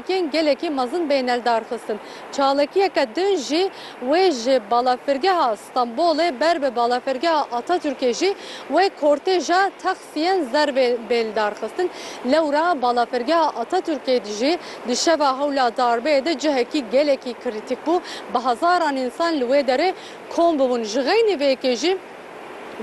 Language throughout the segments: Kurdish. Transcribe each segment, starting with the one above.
Keng gelekî mezin bêne lidarxistin. Çalakiyeke din jî wê ji balafirgeha Stenbolê ber bi balafirgeha Atatürkê jî wê kortêja taksiyên zer bê lidarxistin. Lewra balafirgeha Atatürkê de jî di şeva hewla darbeyê de cihekî gelekî krîtîk bû. Bi hezaran însan li wê derê kom bûbûn. Ji xeynî vê yekê jî.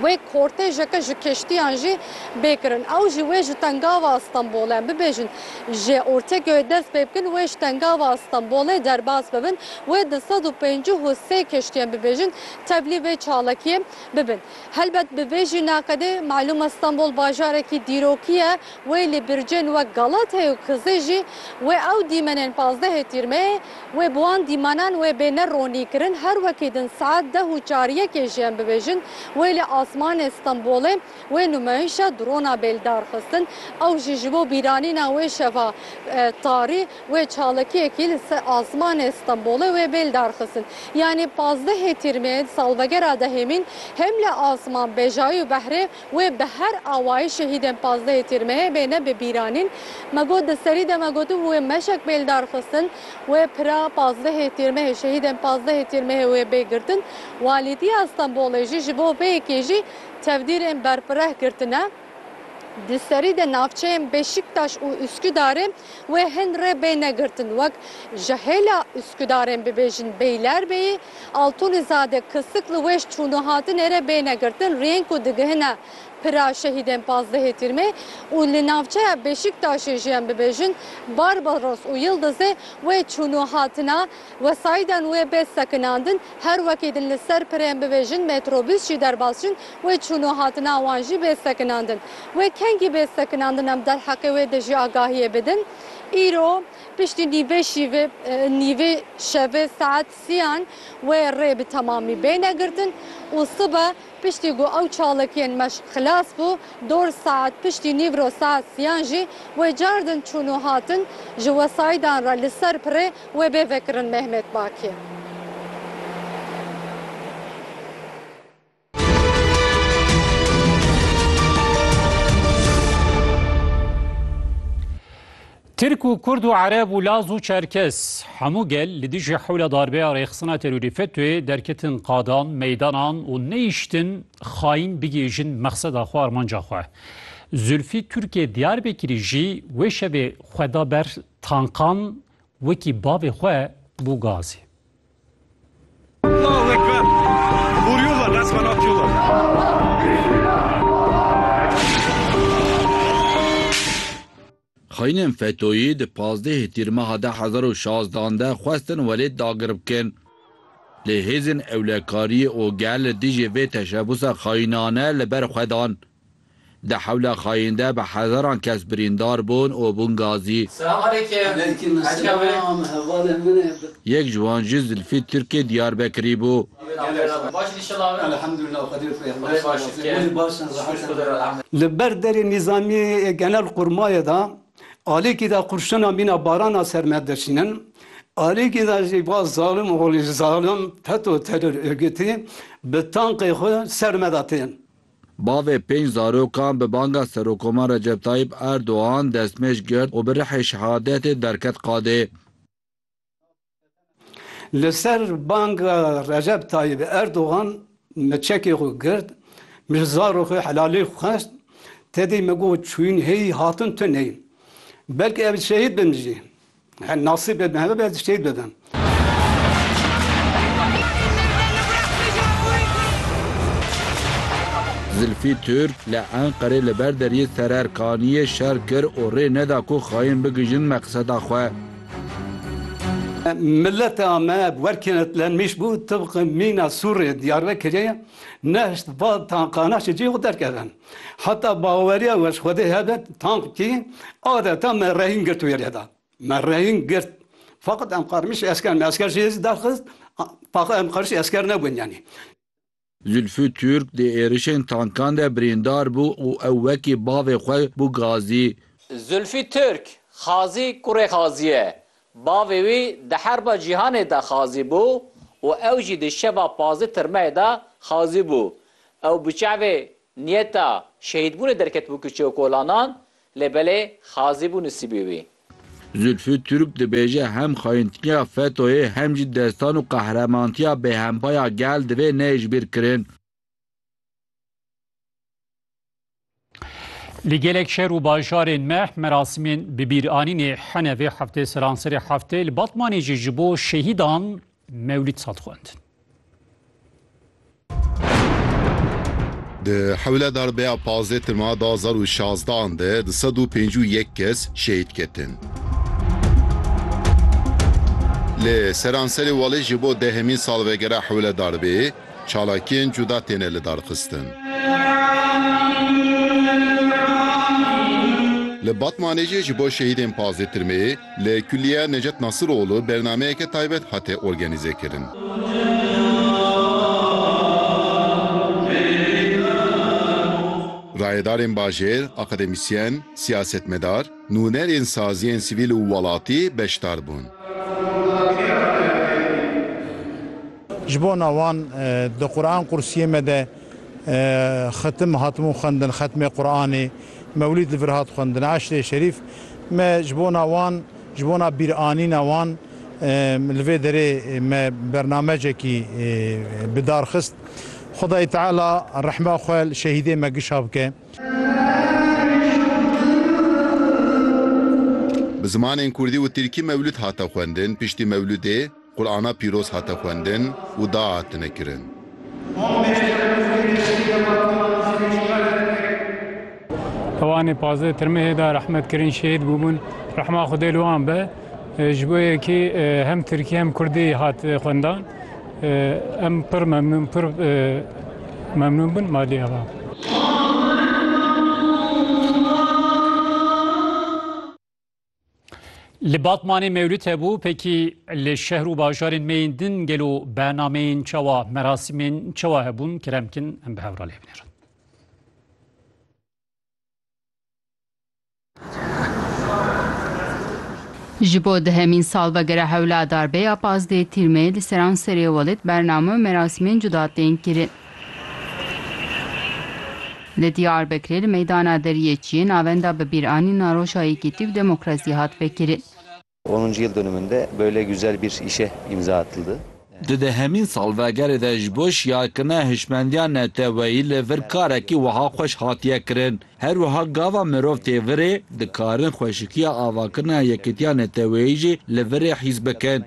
Wê kortejeke ji keştiyan jî bê kirin. Ew jî wê ji Tengava Stenbolê bibêjin. Ji Ortekyoyê dest pê bikin wê ji Tengava Stenbolê derbas bibin. Wê di sed û pêncî û sê keştiyan bibêjin tevlî vê çalakiyê bibin. Helbet bi vê jî naqedê malûm e Stenbol bajarekî dîrokî ye. Wê li bircên wek Galateyê û Kizê jî wê ew dîmenên pazdehê tîrmeyê wê bi wan dîmenan wê bê ne ronî kirin her wekî din saet deh û çar yekê jê em bibêjin wê li asmanê Stenbolê wê numayîşa drona bêldar xistin ew jî ji bo bîranîna wê şeva tarî wê çalakiyekî li ser asmanê Stenbolê wê bêldar xistin yanî pazdehê tîrmeyê di salvegera dehê mîn hem li asman bejayî û behrê Wê bi her awayî şehîdên pazdehê Tîrmehê bêne bi bîranîn. Me got di serî de me gotibû wê meşek bê li dar xistin. Wê pira pazdehê Tîrmehê, şehîdên pazdehê Tîrmehê wê bê girtin. Walîtiya Stenbolê jî ji bo vê yekê jî tevdîrên berfireh girtine. Di serî de navçeyên Beşiktaş û Üsküdarê Wê hin rê bêne girtin wek ji hêla Uskudarên bibêjin Beylerbeyî, Altunizade, Kisik li wêş çûn û hatinê re bêne girtin riyên ku digihine pira şehîdên pazdehê Tîrmê û li navçeya Beşîktaşê jî em bibêjin Barbaros û Yildizê wê çûn û hatina Wesayîdan wê bê sekinandin, her wekî din li ser pirên bibêjin metrobûs jî derbas jin, wê çûn û hatina wan jî bê sekinandin. Wê kengî bê sekinandin em derheqê wê de jî agahiyê bidin. Îro piştî nîvê şîvê nîvê şevê saet sîyan wê rê bi temamî bêne girtin û sibe Piştî ku ew çalakiyên meşq xilas bû, dor saet piştî nîvro saet siyan jî wê cardin çûn û hatin ji wesayîdan re li ser pirê wê bê vekirin Mehmet Baki. Tirk û Kurd û Ereb û Laz û Çerkes, hemû gel li dijî hewla darbeya rêxistina terorî FETÖ'ê derketin qadan, meydanan û neyiştin xayîn bigihîjin mexseda xwe, armanca xwe. Zülfî Türkê Diyarbekirî jî wê şevê xwe da ber tankan wekî bavê xwe bû gazê. Xaînên FETOyî di pazdehê Tîrmeha de hezar û şazdan de xwestin welêt dagir bikin. Lê hêzên ewlekariyê OGL li dijî vê teşebusa xaînane li ber xwe dan. Di hewla xaîn de bi hezaran kes birîndar bûn û bûn gazî. Yek ji wan jî Zilfî Tirkê Diyarbekirî bû. Li ber derê nîzamî yê genel qurmayê de alîkî de qurşina mîna barana ser me dişînin. Alîkî de jî va zalim oxlî zalim feto teror ûrgûtî bi tankê xwe ser me de tên. Bavê pênc zarokan bi banga Serokoman Recep Tayîp Erdogan destmêj girt û bi rihê şehadetê derket qadê. Li ser banga Recep Tayyîp Erdogan min çekê xwe girt, min ji zarê xwe helalî xwest, tedî min got çûyîn hêyî hatin tu neyî. Belkî ev şehîd bim jî. Her nasîbê min hebe be ez şehîd bibim. Zilfî Tirk li Enqerê li ber deriyê Sererkaniyê şer kir û rê neda ku xayên bigihîjin meqseda xwe. Mileta me bi wer kenetlenmiş bû, tibq mîna Sûrê Diyarbekirê ne hişt va tankanan ji cihê xwe derkevin. Heta baweriya we ji Xwedê hebe, tankî adeta me rehîn girt û wê lêda. Me rehîn girt. Faqat em qarmiş esker, me esker jê zî derxist, faqat em qarmiş esker nebûn yanî. Zülfü Türk di êrişên tankan de birîndar bû û ew wekî bavê xwe bû gazî. Zülfü Türk, Xazî kurê Xazî ye. Bavê wî di Herba Cîhanê de xazî bû û ew jî di şeva pazdeh tirmeyê de xazî bû. Ew bi çavê niyeta şehîdbûnê derketibû Kiçeokolanan lê belê xazî bû nisîbê wî. Zülfü Türk dibêje hem xayintiya FETÖ'yê hem jî destan û qehremantiya BHM'pa ya gel divê neyijbîrkirin. Li gelek şer û bajarên me merasimên bibîranînê hene vê heftê seranserê heftê li Batmanê jî ji bo şehîdan Mewlîd Sad xwend. Di hewle darbeya pazdeh ti ma da zar û şazdan de di sed û pêncî û yek kes şehîd ketin. Li seranserê welê ji bo dehemîn salvegera hewle darbeyê çalakiyên cuda têne lidarxistin. Li Batmanê jî ji bo şehîdên pazdeh tirmeyê Li Kulîya Necet Nasiroğlu bernameyeke taybet hate organîzekirin. Rayedarên bajêr, akademîsyen, siyasetmedar, nûnerên saziyên sivîl û welatî beşdar bûn. Ji bona wan di Quran qursiyê me de Xetim hatibûn xwendin, xetmê Quranê, mewlîd li vir hat xwendin, eşrê şerîf. Me ji bona wan, ji bona bîranîna wan li vê derê me bernamecekî bi dar xist. Xwedayê Teala rehma xwe li şehîdê me gişa bike. Bi zimanên kurdî û tirkî mewlûd hate xwendin, piştî mewlûdê, Qur'ana pîroz hate xwendin û dua hatine kirin. Ewanê pazdeh Tirmehê de rehmet kirin şehîd bûbûn. Rehma Xwedê li wan be. Ji bo yekî hem Tirkî hem Kurdî hat xwendan. Em pir memnûn pir memnûn bûn malê ava. Li Batmanê mewlûd hebû pekî li şehr û bajarên me yên din gelo bernameyên çawa merasîmên çawa hebûn kiremkin em bi hewra lê binêrin. Ji bo dihemîn salvegera hewla darbeya pazdeh tîrmê li seran serê welêt bername û merasîmên cuda tên kirin. Li Diyarbekirê li meydana Deriyê Çiyê navenda bibîranîna Roja Yekîtî û Demokrasî hat vekirin. Onuncu yıl dönümünde böyle güzel bir işe imza atıldı. Di dehemîn salvegerê de ji bo şiyakirina hişmendiya neteweyî li vir karekî wiha xweş hatiye kirin, Her wiha gava mirov tê virê, dikarin xweşikiya avakirina yekîtiya neteweyî jî li virê hîs bikin.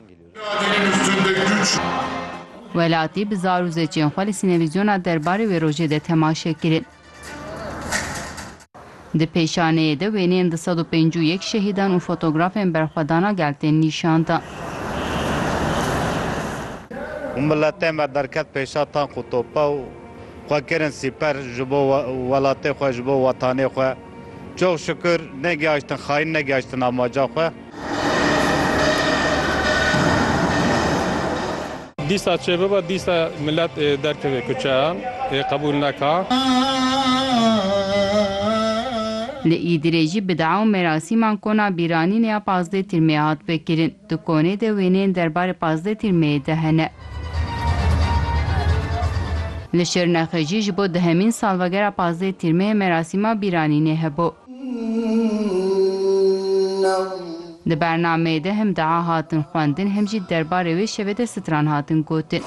Welatî bi zar û zeçên xwe li sînevîzyona derbarê wê rojê de temaşe kirin. Di pêşaneyê de wêneyên du sed û pêncî û yek şehîdan û fotografên berxwedana gel tên nîşan dan. Hûn miletê me derket pêşa tank û topa û xwe kirin sîper ji bo welatê xwe, ji bo wetanê xwe. Çox şikûr negihaştin xayîn negihaştin amaca xwe. Dîsa çê bibe, dîsa milet ê derkeve kuçeyan, ê qebûl neka. Li Îdirê jî bidea û merasîman kona bîranînê ya pazdeh Tirmeyê hat vekirin. Di konê de wêneyên derbarê pazdeh Tirmeyê de hene. Li Şirnexê jî ji bo dihemîn salvegera pazdeh Tirmeyê merasîma bîranînê hebû. Di bernameyê de hem dua hatin xwendin hem jî derbarê wê şevê de stran hatin gotin.